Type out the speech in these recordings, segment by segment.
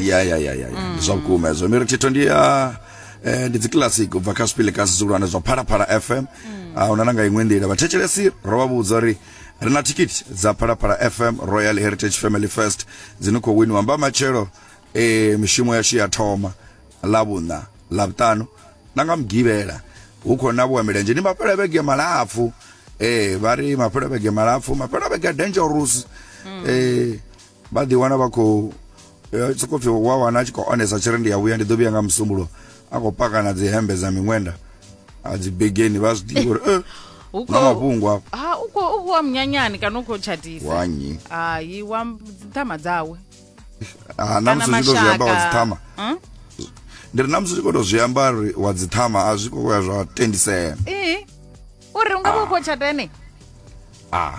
ya ya ya ya mm. zwa vhukuma hezwo miri thitho ndi ya eh, ndi dzikilasic ubva kha zwipili kasi zwihulwane zwa phalaphala fm mm. a ah, huna na nga iṅwe nḓila vhathetshelesi ro vha vhudza uri ri na thikiti dza phalaphala fm royal heritage family first dzine khou winiwa mba matshelo eh, mishumo yashu ya thoma ḽa vhuṋa ḽa vhuṱanu na nga mugivhela hu khou na vhuwa milenzhe ndi mafhela vhege malapfu eh, vha ri mafhela vhege malapfu mafhela vhege dangerous mm. eh, vha ḓi wana vha khou eh, sokou pfi wa wana a tshi khou onesa tshiri ndi ya vhuya ndi ḓo vhuya nga musumbulo a khou paka na dzi hembe dza miṅwenda a dzi begeni vha zwi ḓivha uri eh, Hu na khou- mafhungo afho ha u khou u khou wa munyanyani kana u khou tshatisa wa nnyi hayi wa dzithama dzawe Ah, na kana musi u tshi khou zwi amba wa mashaka dziṱhama Hmm? ndi ri na musi u tshi khou tou zwi amba uri wa dziṱhama a zwi khou ya zwa tendisea ee uri u nga vha u khou tshata ene ah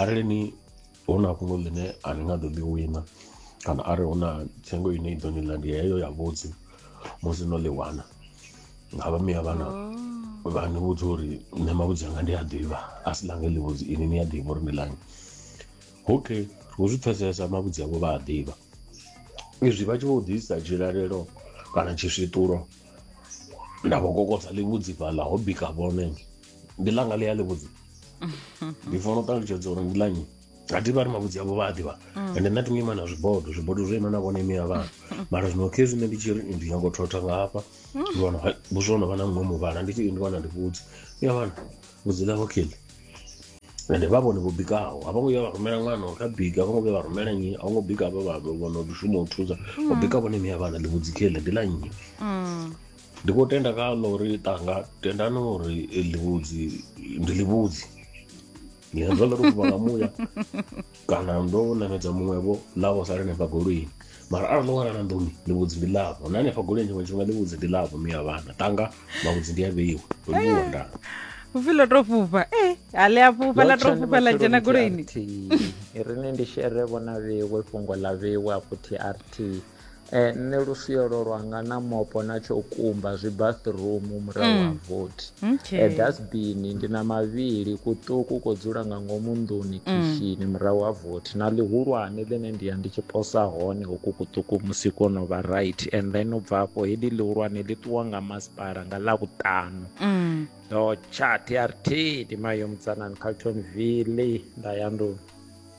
arali ni hu na fhungo ḽine a ni nga ḓo ḽi wina kana arali hu na thengo ine i ḓo ni ḽa ndi heyo ya vhudzi musi no ḽi wana nga vha miya vhana oh. vha ni vhudza uri nṋe mavhudzi anga ndi a ḓivha a si ḽange ḽi vhudzi ini ni a ḓivha uri ndi ḽange okay hu zwi pfhesesa mavhudzi avho vha a ḓivha izwi vha tshi vho ḓisa tshilalelo kana tshiswiṱulo nda vho kokodza ḽivhudzi fhaḽa ho bika vhone ndi langa ḽi a ḽi vhudzi ndi fanela u ṱalutshedza uri ndi ḽa nyi a thi vha ri mavhudzi avho vha a ḓivha ende nṋe thi ngo ima na zwibodo zwibodo zwo ima na vhone imi ya vhana mara zwino khe zwine ndi tshi ri ndi nyanga u thotha nga hafha ndi wana hai, vhuswa ho no vha na muṅwe muvhala ndi tshi ndi wana ndi vhudzi ya vhana vhudzi ḽa hokheli ende vha vhone vho bikaho a vho ngo vhuya vha rumela ṅwana uri kha bika a vho ngo vhuya vha rumela nnyi a vho ngo bika vha vha vhono shuma u thusa u bika vhone imi ya vhana ḽi vhudzi kheli ndi ḽa nnyi ndi khou tenda kha ḽa uri ṱanga tendani uri ḽivhudzi ndi ḽivhudzi ngezwo ḽo tou fuma nga muya kana ndo namedza muṅwevho ḽavho sala hanefha goloini mara arali ndo wana na nḓuni ḽivhudzi ndi ḽavho na hanefha goloini tshiṅwe tshifhinga ḽivhudzi ndi ḽavho miya vhana ṱanga mavhudzi ndi a vheiwa ndo ḽiwa eh. ndana upfi ḽo tou fhufha e eh, a ḽi a fhufha ḽa tou fhufha ḽa dzhena goloini ri ni ndi shere vhona vhewe fhungo ḽa vhewe a futhi rt Eh, nṋe lusiyo lwo lwanga na mopo na tsho kumba zwi bathroom murahu ha vothi Okay. Eh, dasbini ndi na mavhili kuṱuku ko dzula nga ngomu nḓuni khishini murahu ha vothi na ḽihulwane ḽine ndi ya ndi tshi posa hone hoku kuṱuku musi ko no vha right and then u bva afho heḽi ḽihulwane ḽi ṱuwa nga masipala nga ḽavhuṱanu Mm. ndo tsha trt ndi mayo mutsanani calton ville nda ya nḓuni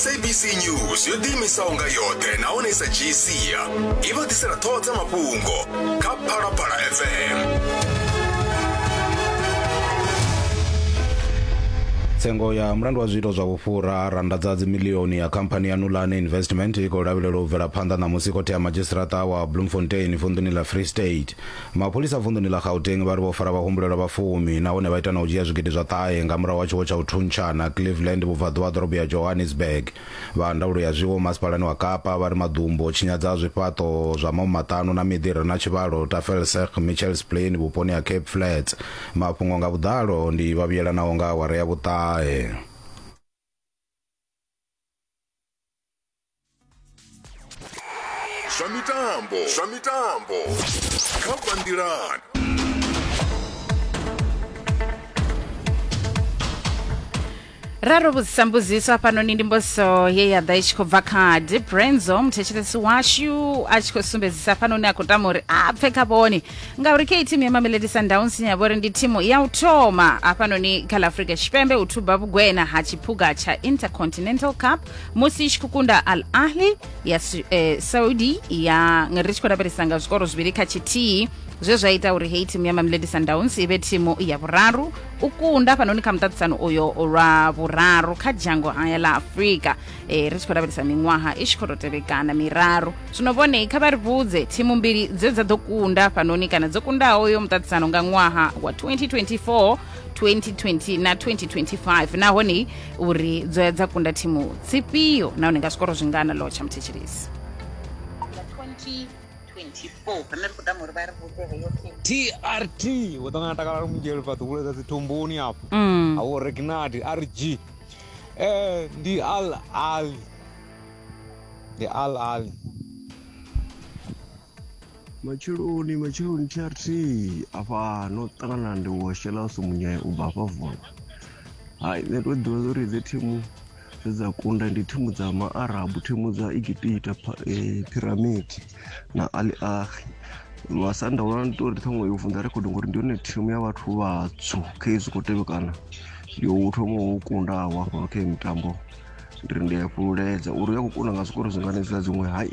sabc news yo ḓiimisaho nga yoṱhe nahone i sa dzhii sia i vha ḓisela ṱhoho dza mafhungo kha phalaphala fm tsengo ya mulandu wa zwiito zwa vhufhura randa dza dzimilioni ya khamphani ya nulane investment i khou lavhelelwa u bvela phanḓa ṋamusi khothe ya madzhisiṱaraṱa wa bloemfontein vunḓuni ḽa free state Mapholisa vunḓuni ḽa Gauteng vha ri vho fara vhahumbulelwa vha fumi nahone vha ita na u dzhia zwigidi zwa ṱahe nga murahu ha tshiwo tsha u thuntshana Cleveland vhubvaḓuvha ha ḓorobo ya Johannesburg. Vha ndaulo ya zwiwo masipalani wa Kapa vha ri maḓumbu o tshinyadza zwifhaṱo zwa mau maṱanu na miḓi i re na tshivhalo Tafelserg Mitchells Plain vhuponi ha Cape Flats. Mafhungo nga vhuḓalo ndi vha vhuyelanaho nga awara ya vhuṱahe. zwa mitambo zwa mitambo kha bandirani ra ro vhudzisa mbudziso hafhanoni ndi mbudziso ye ya ḓa i tshi khou bva kha deep renzo muthetshelesi washu a tshi khou sumbedzisa hafhanoni a khou tama uri a pfe kha vhone ngauri khe thimu ya mamelodi sundowns ine ya vha uri ndi thimu ya u thoma hafhanoni kha la afrika tshipembe u thuba vhugwena ha tshiphuga tsha intercontinental cup musi i tshi khou kunda al ahli ya Su- eh, saudi ya nga ri tshi khou lavhelesa nga zwikoro zwivhili kha tshithihi zwe zwa ita uri heyi thimu ya mamelodi sundowns i vhe thimu ya vhuraru u kunda fhanoni kha muṱaṱisano uyo lwa vhuraru kha dzhango haya ḽa afurika eh, ri tshi khou lavhelesa miṅwaha i tshi khou tou tevhekana miraru zwino vhone kha vha ri vhudze thimu mbili dze dza ḓo kunda fhanoni kana dzo kundaho yo muṱaṱisano nga ṅwaha wa 2024 2020 na 2025 nahone uri dzo ya dza kunda thimu dzifhio nahone nga zwikoro zwingana lowo tsha muthetshelesi trt wo ṱangana takala lumungelo fhaṱi kule dza dzithomboni afho Mm. awo regnard rg eh ndi al ali ndi al ali matsheloni matsheloni trt afha no ṱangana ndi wo shela sumunyaya u bva hafha vula hai nṋe to ḓivha zwa uri dzi thimu dze dza kunda ndi thimu dza maarabu thimu dza egipita piramidi eh, na ali ahi masanda wana ndi tori ṱhaṅwe yo vunḓa rekhodo ngori ndi yone thimu ya vhathu vhatswu kha izwi khou tevhekana yo thoma wo kundaho afho kha mitambo ndi ri ndi a fhululedza uri u ya khou kunda nga zwikoro zwingani zwa dziṅwe hai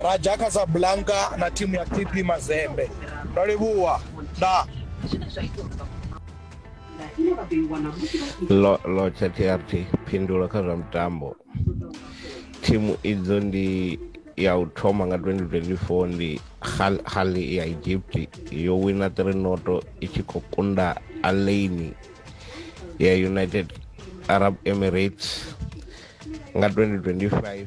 Raja Casablanca na thimu ya TP Mazembe. Ndo livhuwa. Ndaa. Lo, lo chatiyarthi phindulo kha zwa mitambo thimu idzo ndi ya u thoma nga 2024 ndi Hal- hali ya egypt yo wina 3 noto i tshi khou kunda alaini ya united arab emirates nga 2025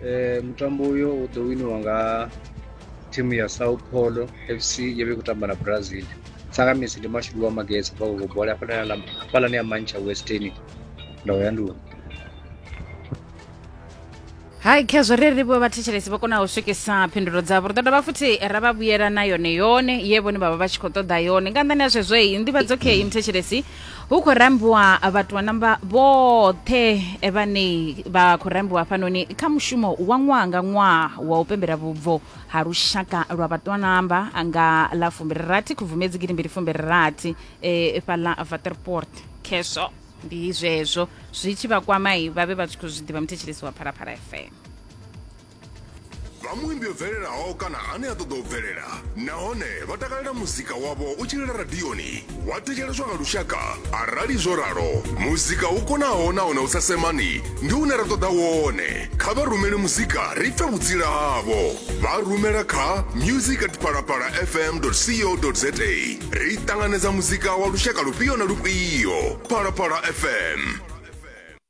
Eh, mutambo uyo u ḓo winiwa nga thimu ya sao paulo fc yo vha i khou tamba na brazil tsakamisi ndi mashudu wa magesa bva koko bola hafhalani ya mancha western ndawo ya nduni hai khezwo ri ri vho vhathetshelesi vho konaho u swikisa phindulo dzavho ri ḓo dovha futhi ra vha vhuyela na yone yone ye vhone vha vha vha tshi khou ṱoḓa yone nga nnḓani ha zwezwo i nḓivhadzo khe i muthetshelesi hu khou rambiwa vhatuanamba vhoṱhe vhane vha khou rambiwa hafhanoni kha mushumo wa ṅwaha nga ṅwaha wa u pembela vhubvo ha lushaka lwa vhatuanamba nga ḽa fumbirirathi khubvumedzi gidi mbili fumbirirathi eh, fhaḽa vaterport khesho ndi zwezwo zwi tshi vha kwamai vha vhe vha tshi khou zwi ḓivha muthetsheleso wa phalaphala fm vha muimbi o bvelelaho kana ane a ṱoḓa u bvelela nahone vha takalela muzika wavho u tshilila radioni wa thetsheleswa nga lushaka arali zwo ralo muzika u konaho nahone u sa semani ndi une ra ṱoḓa wone kha vha rumele muzika ri pfe vhutsila havho vha rumela kha music at palapala fm co za ri ṱanganedza muzika wa lushaka lufhio na lufhio palapala fm